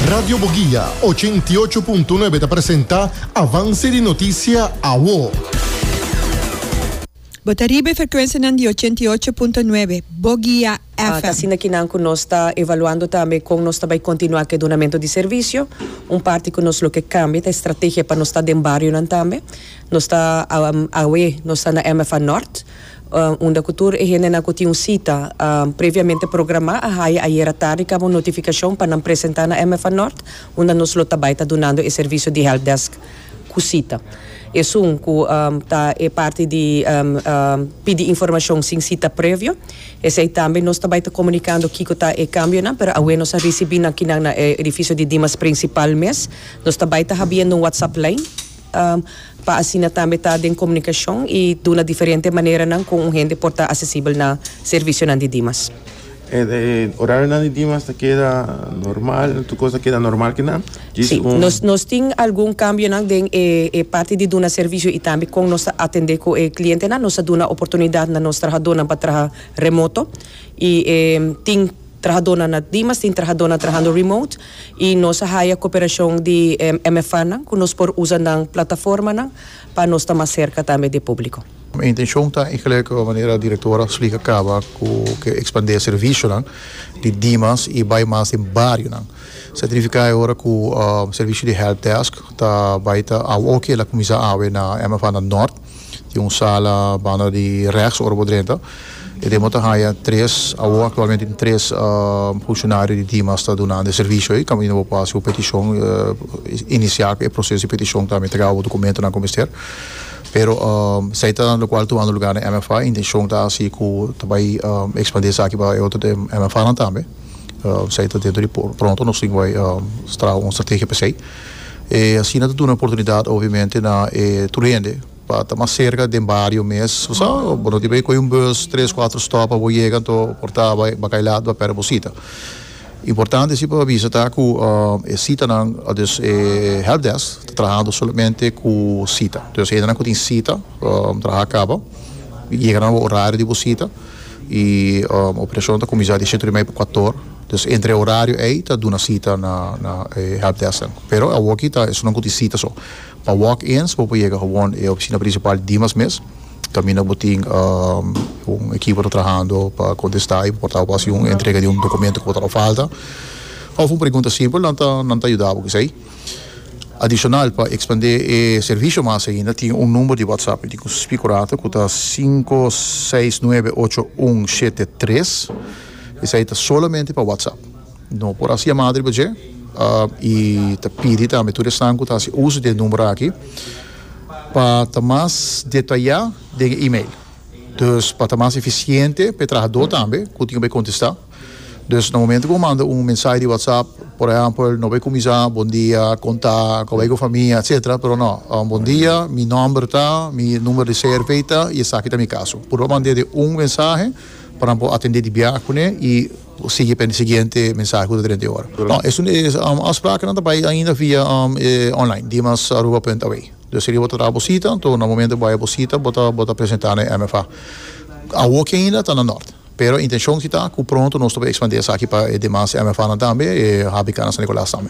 Radio Boguia, ochenta i ocho punto nuebe ta presenta avanse di notisia awo. Bo ta riba e frekuensianan di ochenta i ocho punto nuebe, Boguia FM. Ta asina ki nan ku nos ta evaluando tambe kon nos ta bai kontinuá ku e dunamentu di servisio. Un parti ku nos loke kambia ta e strategia pa nos sta den barionan tambe. Nos ta, awe nos ta na MFA Nort. unda cu tur e hendenan cu tin un cita previamente programa a haya ayera tardi caba un notificacion pa nan presenta na MFA Nort unda nos lo ta bay ta dunando e servicio di help desk cu cita. Esun cu ta e parti di pidi informacion sin cita previo. Esey tambe nos ta bay ta comunicando kico ta e cambionan pero awe nos a ricibi nan kinan na e edificio di Dimas principal mes. Nos ta bay ta habiendo un WhatsApp lijn. pa asina tambe ta den komunikashon i duna diferente maneranan ku un hende por ta asesibel na servisionan di Dimas. E orarionan di Dimas ta keda normal? Tur kos ta keda normal kina? Djis Sí, un. nos nos tin algun kambionan den e e parti di duna servisio i tambe kon nos ta atendé ku e klientenan. Nos a duna oportunidat na nos trahadónan pa traha remoto i tin trahadónan na Dimas, tin trahadónan trahando remote. y nos a haya cooperacion di e MFAnan cu nos por usa nan plataformanan pa nos ta mas cerca tambe di e publico. Mi intencion ta y gelijk cu manera Directora a splica caba cu ke expande e servicionan di Dimas y bay mas den barionan. Certifica e ora cu servicio di helpdesk ta bay ta awe oke la cuminsa awe na MFAnan Nort. Tin un sala banda di rechts ora bo drenta. E dema ta haya tres, awo actualmente tin tres funcionario di Dimas ta dunandi e servicio ey. Caminda bo por haci bo peticion inicia cu e proceso di peticion tambe traha bo documentonan cu mester. Pero esey ta locual tumando lugar den MFA. E intencion ta haci cu ta bay expandi esaki pa e otro MFAnan tambe. Esey ta dentro di pronto nos tin bay traha un strategia pa esey. E asina ta duna oportunidat obviamente na e tur hende pa ta mas serka den bario mes. Sa, bo no tin pa ke kohe un bus tres, kuater stop pa bo yega anto por ta bai bakai lat bo a perde bo sita. Importante si pa bisa ta ku e sitanan, dus e help desk ta trahando solamente ku sita. Dus hendenan ku tin sita traha kaba yega nan bo orario di bo sita i operashon ta kuminsá di e setu di mei pa kuater. Dus entre e horario ei ta duna sita na na e helpdesknan. Pero awor aki ta esnan ku tin sita so. Pa walk-ins bo por yega gewoon e opisina prinsipal dimas mes, kaminda bo tin un ekipo ta trahando pa kontestá i bo por tabata bo hasi un entrega di un dokumentu ku bo tabata falta òf un pregunta simpel, nan ta nan ta yuda bo ku esei. Adishonal pa ekspandé e servisio mas ainda tin un number di whatsapp mi tin ku spikurato ku ta sinku seis nuebe ocho un shete tres. Esei ta solamente pa WhatsApp. No por hasi yamada riba dje i ta pidi tambe tur esnan ku ta hasi uso di e number aki pa ta mas detayá den e email. Dus pa ta mas efisiente pa e trahadó tambe ku tin ku bai kontestá. Dus na momento ku bo manda un mensahe di WhatsApp, por ehèmpel, no bai kuminsá bondia, kon ta, ku a bai ku e famia, etsetera, pero no, bondia, mi nòmber ta, mi number di CRV ta i esaki ta mi kaso. Puru pa mand'é den un mensahe. pa nan por atende di biaha kuné i por sigui pa e siguiente mensahe ku ta drenta e ora. No, esun e afsprakennan ta bai ainda via e online, dimasaruba punt away. Dus serie bo ta traha bo sita, anto na momento bo bai bo sita bo ta bo ta presentá na e MFA. Awoki ainda ta na nort, pero intenshon si ta ku pronto nos ta por ekspandí esaki pa e demas MFAnan tambe, e HBKnan San Nicolas tambe.